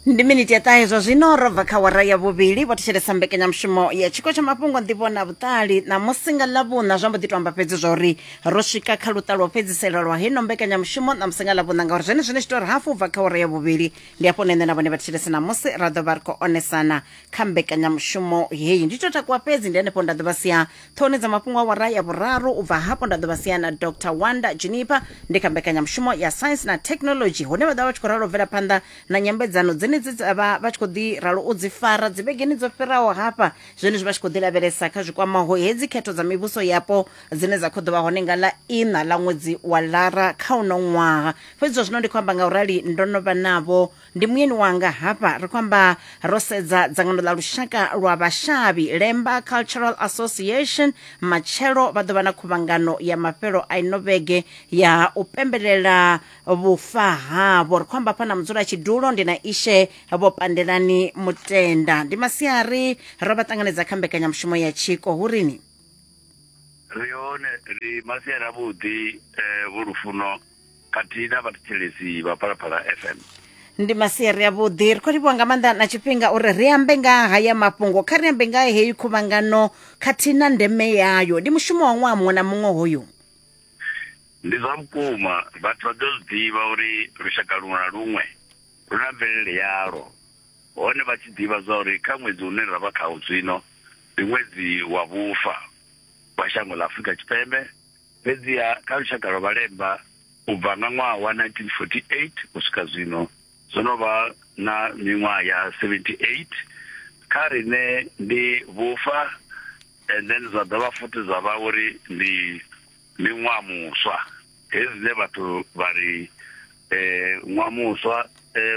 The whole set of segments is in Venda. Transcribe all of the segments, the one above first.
ndi miniti ya ṱahe zwa zwino ro bva kha wara ya vhuvhili vho thetshelesa mbekanyamushumo ya tshiko tsha mafhungo nḓivho na vhuṱali ṋamusi nga ḽavhuṋa zwa mbo ḓi to amba fhedzi zwa uri ro swika kha luṱa lwa u fhedzisela lwa heno mbekanyamushumo ṋamusi nga ḽavhuṋa ngauri zwene zwine tshi to ri hafu bva kha wara ya vhuvhili ndi hafho nṋe na vhone vha thetshelesa ṋamusi ra ḓo vha ri khou onesana kha mbekanyamushumo heyi ndi to takuwa fhedzi ndi henefho nda ḓo vha sia Ṱhohoni dza mafhungo awara ya vhuraru u bva hafho nda ḓo vha sia na Dr Wanda Juniper ndi kha mbekanyamushumo ya Science na Technology hune vha ḓo vha vha tshi khou ralo u bvela phanḓa na nyambedzano dzenedzi dza vha vha tshi khou ḓi ralo u dzi fara dzivhegeni dzo fhiraho hafha zwenezwi vha tshi khou ḓi lavhelesa kha zwikwamaho hedzi khetho dza mivhuso yapo dzine dza khou ḓo vha hone nga ḽa iṋa ḽa ṅwedzi wa lara kha uno ṅwaha fhedzi zwa zwino ndi khou amba nga u rali ndo no vha navho ndi muyeni wanga hafha ri khou amba ro sedza dzangano ḽa lushaka lwa vhashavhi lemba cultural association matshelo vha ḓo vha na khuvhangano ya mafhelo a ino vhege ya u pembelela vhufa havho ri khou amba hafha na mudzula tshidulo ndi na ishe vho pandelani mutenda ndi masiari ro vha ṱanganedza kha mbekanyamushumo ya tshiko hu rini ri hone ri masiari avhuḓi eh, vhulufuno khathihi na vhathetshelesi vha phalaphala fm ndi masiari avhuḓi ri khou livhuwa nga maanḓa na tshifhinga uri ri ambe nga haya mafhungo kha ri ambe nga heyi khuvhangano khathihi na ndeme yayo ndi mushumo wa ṅwaha muṅwe na muṅwe hoyu ndi zwa vhukuma vhathu vha ḓo zwi ḓivha uri lushaka luṅwe na luṅwe lu na mvelele yalo hone vha tshi ḓivha zwa uri kha ṅwedzi une ra vha khawo zwino ndi ṅwedzi wa vhufa wa shango ḽa afurika tshipembe Fhedziha kha lushaka lwa Vhalemba, u bva nga ṅwaha wa 1948 u swika zwino, zwo no vha na miṅwaha ya 78, kha riṋe ndi vhufa and then zwa dovha futhi zwa vha uri ndi miṅwaha muswa. Hezwi zwine vhathu vha ri ṅwaha muswa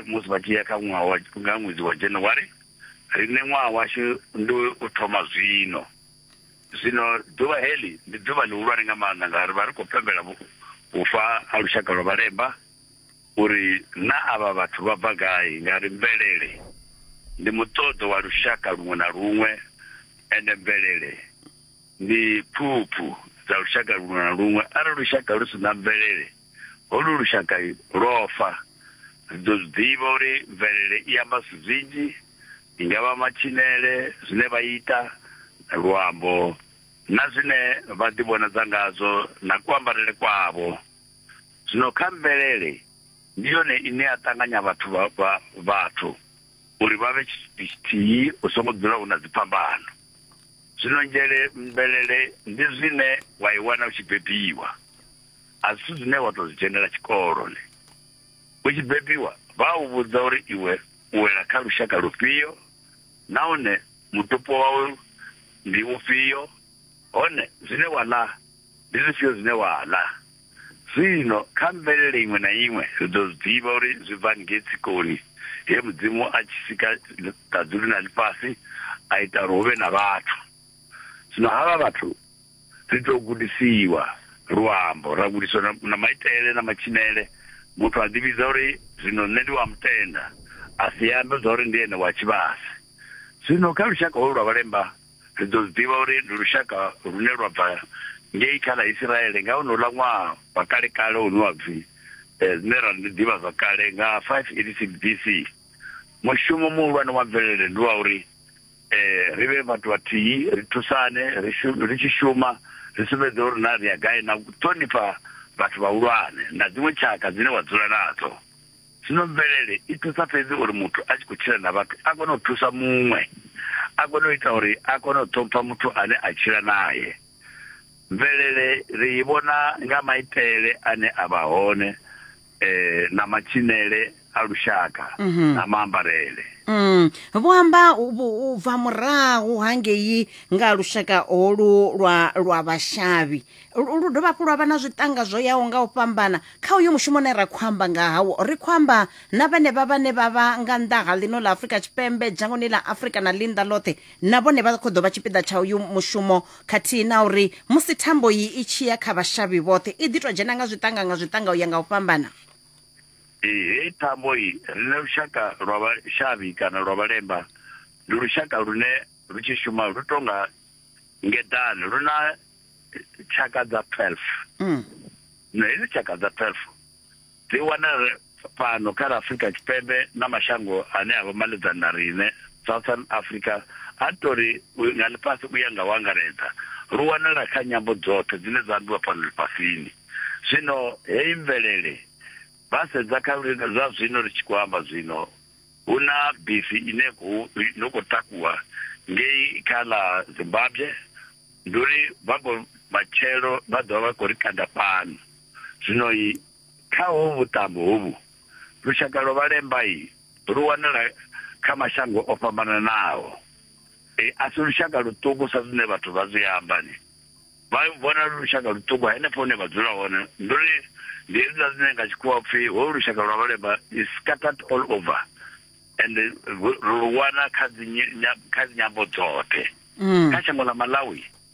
musi vha tshi ya kha ṅwaha wa, nga ṅwedzi wa January, riṋe ṅwaha washu ndi u thoma zwino. Zwino ḓuvha heḽi ndi ḓuvha ḽihulwane nga maanḓa, ngauri vha ri khou pembela vhufa ha lushaka lwa vhalemba, uri naa avha vhathu vha bva gai, ngauri mvelele ndi muṱoḓo wa lushaka luṅwe na luṅwe, ende mvelele ndi phuphu dza lushaka luṅwe na luṅwe. Arali lushaka lu si na mvelele. Holu lushaka lwo fa. Ri ḓo zwi ḓivha uri mvelele i amba zwithu zwinzhi, i nga vha matshinele, zwine vha ita, luambo, na zwine vha ḓivhonadza ngazwo na kuambarele kwavho. Zwino kha mvelele, ndi yone ine ya ṱanganya vhathu vha, vha, vhathu uri vha vhe tshithu tshithihi, hu songo dzula hu na dziphambano. Zwino nzhele, mvelele ndi zwine wa i wana u tshi bebiwa. a zwithu zwine wa tou zwi dzhenela tshikolo ne. U tshi bebiwa, vha a u vhudza uri iwe u wela kha lushaka lufhio nahone mutupo wau ndi ufhio, hone zwine wa ḽa ndi zwifhio zwine wa ḽa. Zwino kha mvelele iṅwe na iṅwe ri ḓo zwi ḓivha uri zwi bva ngei tsikoni he Mudzimu a tshi sika ṱaḓulu na ḽifhasi a ita uri hu vhe na vhathu. Zwino havha vhathu. Ri tou gudisiwa luambo, ra gudiswa na, na maitele na matshinele. Muthu a ḓivhidza uri, Zwino nṋe ndi wa mutenda, a si ambe zwa uri ndi ene wa tshivhase. Zwino kha lushaka holu lwa vhalemba, ri ḓo zwi ḓivha uri ndi lushaka lune lwa bva ngei kha ḽa Isiraele nga honouḽa ṅwaha wa kale-kale une wa pfi, zwine ra ri ndi ḓivhazwakale, nga 586 BC. Mushumo muhulwane wa mvelele ndi wa uri eh ri vhe vhathu vhathihi ri thusane ri shume ri tshi shuma ri sumbedze uri na ri ya gai na u ṱhonifha vhathu vhahulwane na dziṅwe tshaka dzine wa dzula nadzo zwino mvelele i thusa fhedzi uri muthu a tshi khou tshila na vhathu a kone u thusa muṅwe a kone u ita uri a kone u ṱhompha muthu ane a tshila naye mvelele ri i vhona nga maitele ane a vha hone eh, na matshinele a lushaka Mhm. na maambarele Mm. vho amba u- vhu- u bva murahu hangei nga lushaka holu lwa lwa vhashavhi lu lu dovha hafhu lwa vha na zwiṱanga zwo yaho nga u fhambana kha uyo mushumo une ra khou amba nga hawo ri khou amba na vhenevha vhane vha vha nga nnḓa ha ḽino ḽa afurika tshipembe dzhangoni ḽa afurika na ḽinnḓa ḽoṱhe Na vhone vha khou ḓo vha tshipiḓa tsha uyu mushumo khathihi na uri musi thambo iyi i tshi ya kha vhashavhi vhoṱhe i ḓi tou dzhena nga zwiṱanga nga zwiṱanga u ya nga u fhambana. Ee, heyi thambo iyi, riṋe lushaka lwa vhashavhi kana lwa vhalemba ndi lushaka lune lu tshi shuma lu tou nga ngeḓane, lu na tshaka dza 12. Na hedzi tshaka dza 12. Dzi wanala fhano kha ḽa Afrika Tshipembe na mashango ane a vha maledzani na riṋe. Southern Africa, a ri tou ri nga ḽifhasi u ya nga u angaredza, lu wanala kha nyambo dzoṱhe dzine dza ambiwa fhano ḽifhasini. Zwino heyi mvelele, vha sedza kha zwa zwino ri tshi khou amba zwino, hu na bisi ine no khou takuwa ngei kha ḽa Zimbabwe, ndi uri vha khou matshelo vha ḓovha vha khou ri kanda fhano. Zwino i kha ho vhuṱambo hovhu lushaka lwa vhalemba i lu wanala kha mashango o fhambananaho. E, a si lushaka luṱuku sa zwine vhathu vha zwi amba ni vha vhona lu lushaka luṱuku henefho hune vha dzula hone ndi uri ndi hezwiḽa zwine nga tshikhuwa pfhi ho lushaka lwa vhalemba is scattered all over and lu wana kha dzi kha dzi nyambo dzoṱhe mm. kha shango ḽa Malawi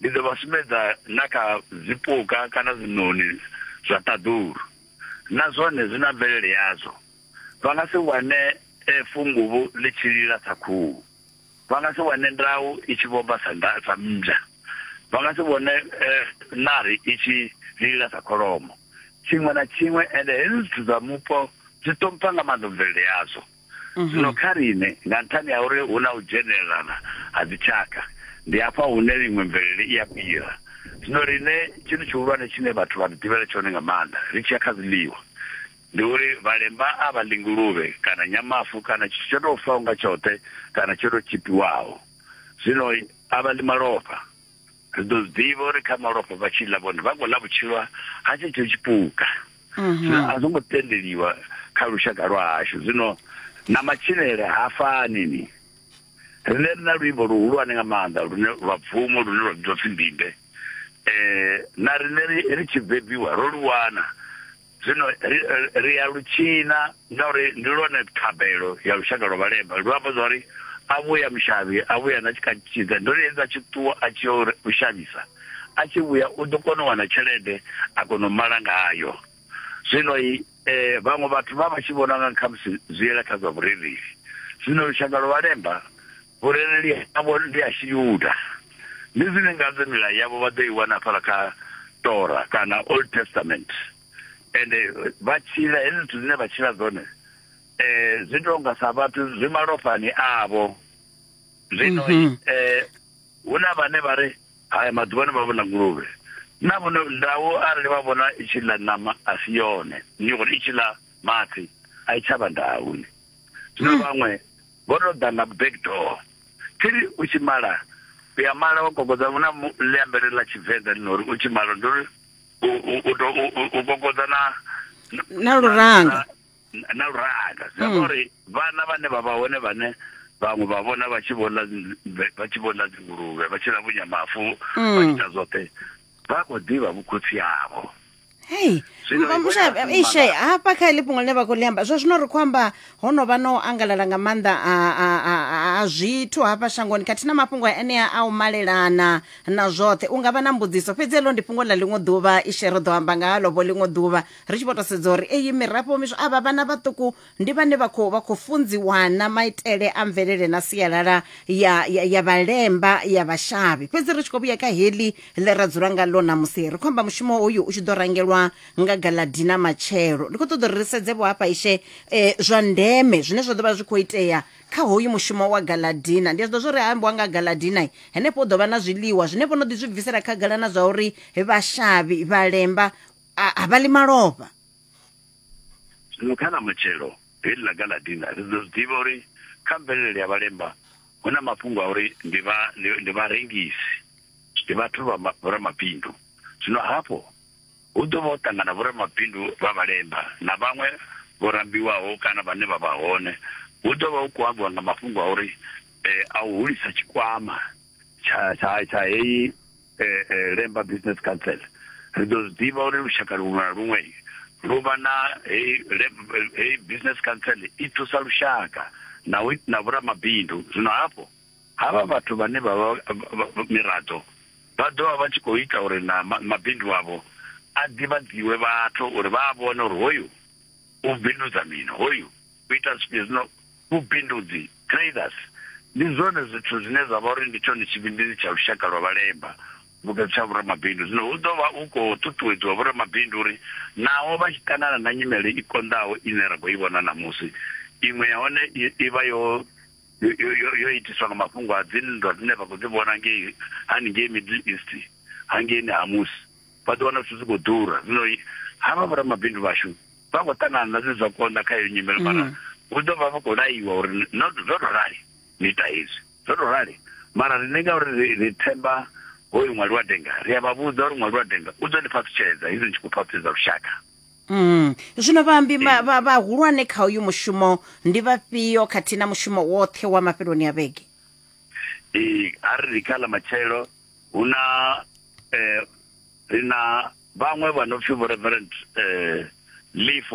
Ndi ḓo vha sumbedza na kha zwipuka kana zwiṋoni zwa ṱaḓulu, na zwone zwi na mvelele yazwo. Vha nga si wane funguvhu ḽi tshi lila sa khuhu, vha nga si wane ndau i tshi vhomba sa sa mmbwa, vha nga si vhone ṋari i tshi lila sa kholomo, tshiṅwe na tshiṅwe. Ende hezwi zwithu zwa mupo zwi ṱhompha nga maanḓa mvelele yazwo. mhm. zwino kha riṋe nga nṱhani ha uri hu na u dzhenelelana ha dzitshaka ndi hafha hune iṅwe mvelele i a fhira zwino riṋe tshithu tshihulwane tshine vhathu vha ri ḓivhela tshone nga maanḓa ri tshi ya kha zwiḽiwa ndi uri vhalemba a vha ḽi nguluvhe kana nyamafu kana tshithu tsho tou faho nga tshoṱhe kana tsho tou tshipiwaho zwino a vha ḽi malofha ri ḓo zwi ḓivha uri kha malofha vha tshi ḽa vhone vha khou ḽa vhutshilo ha tshetsho tshipuka zwino a zwo ngo tendeliwa kha lushaka lwa hashu zwino na matshilele ha fani ni rine ri na luimbo luhulwane nga maanḓa lune lwa bvumo lune lwa vhidzwa pfhi mbimbe um na rine ri tshi bebiwa ro lu wana zwino ri ya lu tshina ngauri ndi lwone thabelo ya lushaka lwa vhalemba lu amba zwa uri a vhuya mushavhi a vhuya na tshikatshidza ndo ri hedza tshi ṱuwa a tshi u shavhisa a tshi vhuya u ḓo kona u wana tshelede a kona u mala ngayo zwino i eh, vhaṅwe vhathu vha vha tshi vhona nga khamusi zwi yela kha zwa vhurereli zwino lushaka lwa vhalemba Vhurereli havho ndi ha Tshiyuda. Ndi zwine ngazwo milayo yavho vha ḓo i wana hafhaḽa kha Tora kana Old Testament. Ende vha tshila, hezwi zwithu zwine vha tshila zwone zwi tou nga sa vhathu zwi malofhani avho. Zwino hu na vhane vha ri haya maḓuvhani vha vhona nguluvhe. Na vhone ndau arali vha vhona i tshi ḽa ṋama a si yone, ndi uri i tshi ḽa mafhi a i tsha vha ndau. Zwino vhaṅwe. Vho to ḓa nga back door. Thiri u tshi mala u ya mala wa kokodza hu na ḽi ambele ḽa tshivenḓa ḽi nori u tshi mala ndi uri u to u kokodza na na luranga na luranga zwi amba mm. uri vhana vhane vha vha hone vhane vhaṅwe vha vhona vha tshi vhona vha tshi vhona dzinguluvhe vha tshi lavhunya mafu vha mm. ita zwoṱhe vha khou ḓivha vhukhotsi havho hei ishe hafha kha heḽi fhungo ḽine vha khou ḽi amba zwa zwino ri khou amba ho no vha na u angalala nga maanḓa a zwithu hafha shangoni khathihi na mafhungo a enea a u malelana na zwoṱhe u nga vha na mbudziso fhedzi heḽo ndi fhungo ḽa ḽiṅwe ḓuvha ishe ri ḓo amba nga halovho ḽiṅwe ḓuvha ri tshi vho to sedza uri eyi mirafho miswa avha vhana vhaṱuku ndi vhane vha khou vha khou funziwana maitele a mvelele na sialala ya, ya, ya vhalemba ya vhashavhi fhedzi ri tshi khou vhuya kha heḽi ḽe ra dzula nga ḽo ṋamusi ri khou amba mushumo hoyu u tshi ḓo rangelwa nga galadina matshelo ndi khou ṱoḓa uri ri sedze vho hafha ishe eh, zwa ndeme zwine zwa ḓo vha zwi khou itea kha hoyu mushumo wa galadina ndi a zwi ḓo zwo ri ambiwa nga galadina henefho u ḓo vha na zwiḽiwa zwine vho no ḓi zwi bvisela khagala na zwa uri vhashavhi vhalemba a a vha ḽi malofha zwino kha na matshelo heḽi ḽa galadina ri ḓo zwi ḓivha uri kha mvelele ya vhalemba hu na mafhungo a uri ndi vha ndi vharengisi ndi vhathu vha vhoramabindu zwino hafho hu ḓo vha ho ṱangana vhoramabindu vha vhalemba na vhaṅwe vho rambiwaho kana vhane vha vha hone hu ḓo vha hu khou ambiwa nga mafhungo a uri eh, a u hulisa tshikwama tsha tsha tsha heyi eh, eh, lemba business council ri ḓo zwi ḓivha uri lushaka luṅwe na luṅwe lu vha na heyi business council i thusa lushaka na na vhoramabindu zwino hafho havha vhathu vhane vha vha miraḓo vha ḓo vha vha tshi khou ita uri na mabindu avho a ḓivhadziwe vhathu uri vha a vhone uri hoyu u bindudza mini hoyu u ita zwino vhubindudzi, traders, ndi zwone zwithu zwine zwa vha uri ndi tshone tshivhindiri tsha lushaka lwa vhalemba vhukati tsha vhoramabindu. Zwino hu ḓo vha hu khou ṱuṱuwedziwa vhoramabindu uri naho vha tshi ṱangana na nyimele i konḓaho ine ra khou i vhona ṋamusi, iṅwe ya hone i vha yo yo yo itiswa nga mafhungo a dzinndwa dzine vha khou dzi vhona ngei haningei Middle East hangeini ha musi vha ḓo wana zwithu zwi khou ḓura. Zwino havha vhoramabindu vhashu vha khou ṱangana na zwi zwa konḓa kha iyo nyimelo mm. mara hu ḓo vha vha khou laiwa uri no zwo to rali ni ita hezwi zwo to rali mara riṋe nga uri ri themba hoyu ṅwali wa denga ri a vha vhudza uri ṅwali wa denga u ḓo ni phaṱhutsheledza hezwi ni tshi khou phaṱhutsheledza lushaka mm. zwino vhaambi vhahulwane kha uyu mushumo ndi vhafhio khathihi na mushumo woṱhe wa mafheloni a vhege ee a ri ri kha ḽa matshelo hu na um ri na vhaṅwe vha no pfi vho reverend um lifo